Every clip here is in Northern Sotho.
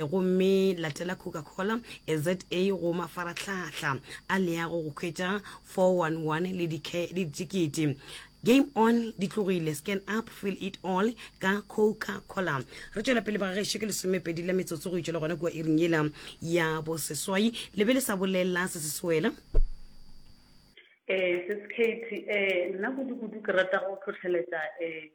gomme latela Coca-Cola ZA go mafarahlahla a leago go hwetša 411 le ditikete. Game on di tlogile, scan up, feel it all ka Coca-Cola. Re tšwela pele ba gešo ke lesomepedi la metsotso go itšwela gona kua iring yela ya boseswai le be le sa bolela se se swela. Eh, Sis Katie, eh, nna kudu-kudu ke rata go hlohleletša, eh,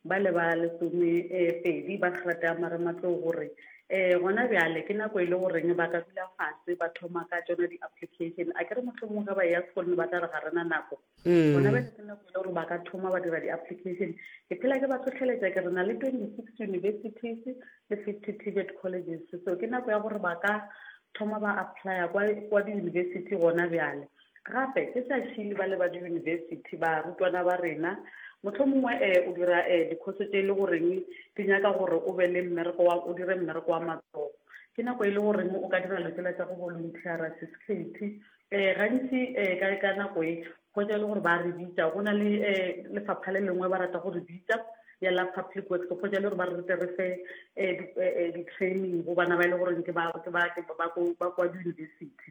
Ba le ba lesome pedi ba hrata marematlou gore e gona bjale ke nako e le goreng ba ka dula fase ba thoma ka tsona di-application a ke re mohlomong ge ba e ya sekolong ba tla re ga rena nako mm. gona bjale ke nako e le gore ba ka thoma ba dira di-application ke phela ke ba tlhotlheletsa ke re na le twenty six universities le fifty tibet colleges so ke nako ya gore ba ka thoma ba applya kwa di-university gona bjale Gape, ke sa šie ba le ba diyunibesithi, barutwana ba rena. Mohlomongwe e, o dira e, dikhoso tše e le goreng di nyaka gore o be le mmereko wa, o dire mmereko wa matsogo. Ke nako e le goreng o ka dira dilo tšela tša go boluntheara, sesikhethi. E, gantši e, ka, ka nako e, hwetša e le gore ba re bitša. Go na le e, lefapha le lengwe ba rata go re bitša, ya la Public Works, go hwetša e le gore ba re tle re fe e, di, e, e, di-training go bana ba e le goreng ke ba, ke ba, ke ba, ba ko, ba kwa diyunibesithi.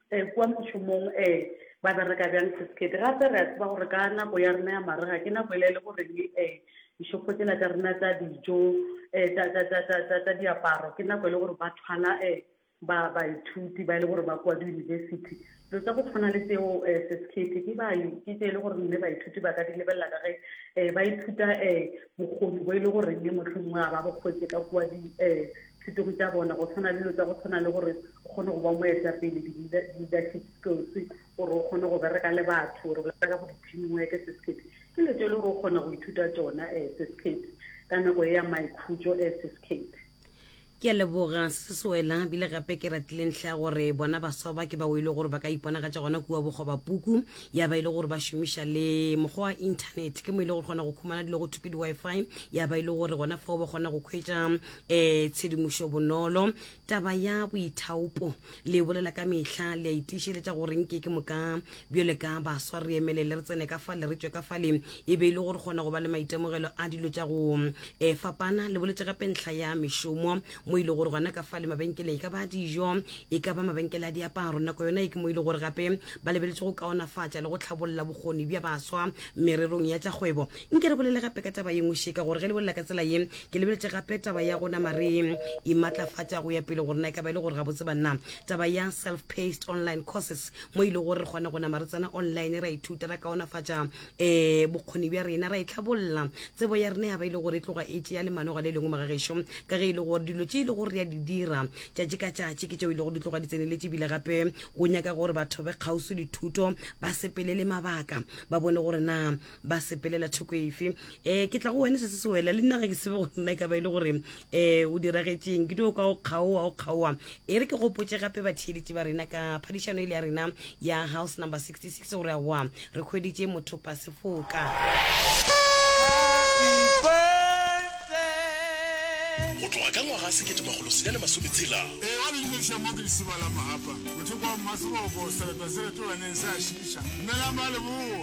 Ee, kua mošomong. Ee, ba bereka bjang sesekete. Gape re a tseba gore ka nako ya rena ya marega ke nako ela e le gore le ee, dishopho tsela tša rena tša dijo, ee, tša, tša, tša, tša, tša, tša diaparo, ke nako e le gore ba thwala ee, ba, baithuti ba e le gore ba kua diyunibesithi. Dilo tša go tshwana le tseo ee, sesekete, ke ba, ke tše e le gore mme baithuti ba ka di lebelela ka ge ee, ba ithuta ee, bokgoni bo e le goreng mohlomongwe ga ba bo hwetše ka kua di, ee, Thutego tša bona, go tshwana le dilo tša go tshwana le gore o kgone go ba moetapele, di-leadership skills, gore o kgone go bereka le batho, re bolela ka go di-team work, Ccap ke dilo tše le gore o kgona go ithuta tšona um Ccap ka nako e ya maikhutšo um Ccap. Ke a leboga, Sis Wela. Bile gape ke ratile ntlha ya gore bona baswa ba ke bao e le gore ba ka iponagatša gona kua bokgobapuku, ya ba e le gore ba šomiša le mokgwa wa Internet, ke mo e le gore kgona go khumana dilo go thwe ke di-Wi-Fi, ya ba e le gore gona fao ba kgona go khwetša um tshedimošo bonolo taba ya boithaopo le bolela ka mehla le a itišeletša gore nke ke moka bjole ka baswa re emelele re tsene ka fale re tšwe ka fale e be e le gore kgona go ba le maitemogelo a dilo tša go um fapana le boletse gape ntlha ya mešomo mo e le gore gona ka fale mabenkeleng e ka ba dijo e ka ba mabenkele a diaparo nako yona e ke mo e le gore gape ba lebeletse go kaonafatša le go tlhabolola bokgoni bja baswa mererong ya tša kgwebo Nke re bolele gape ka taba ye nngwe še, ka gore ge le bolela ka tsela ye, ke lebeletše gape taba ya go nama re imatlafatša go ya pele, gore na e ka ba e le gore gabotse banna, taba ya self-paced online courses, mo e lego gore re kgona go nama re tsena online ra ithuta, ra kaonafatša um bokgoni bja rena, ra itlhabolla tsebo ya rena ya ba e le gore e tloga e tšea lemanoga le lengwe maga gešo, ka ge e le gore dilo tše e le gore re a di dira tšatši ka tšatši ke tšeo e le gore di tloga di tseneletše ebile gape go nyaka gore batho ba kgauswi dithuto ba sepelele mabaka ba bone gore na ba sepelela thoko efe um ke tla go wena se se se wela le nna ge ke sebe go nna e ka ba e le gore um o diragetšeng ke dio ka o kgaowa o kgaowa e re ke gopotse gape batheeletši ba rena ka phadišano e le ya rena ya house number 66 gore a wa re kgweditše mothopa sefoka go tloga ka ngwaga sekete magolo senyane masometshela ee a leleša mo ke lesiba la mogapa motho kwa mmaseboko sereto se retolaneng se a šiša nnelang ba leboa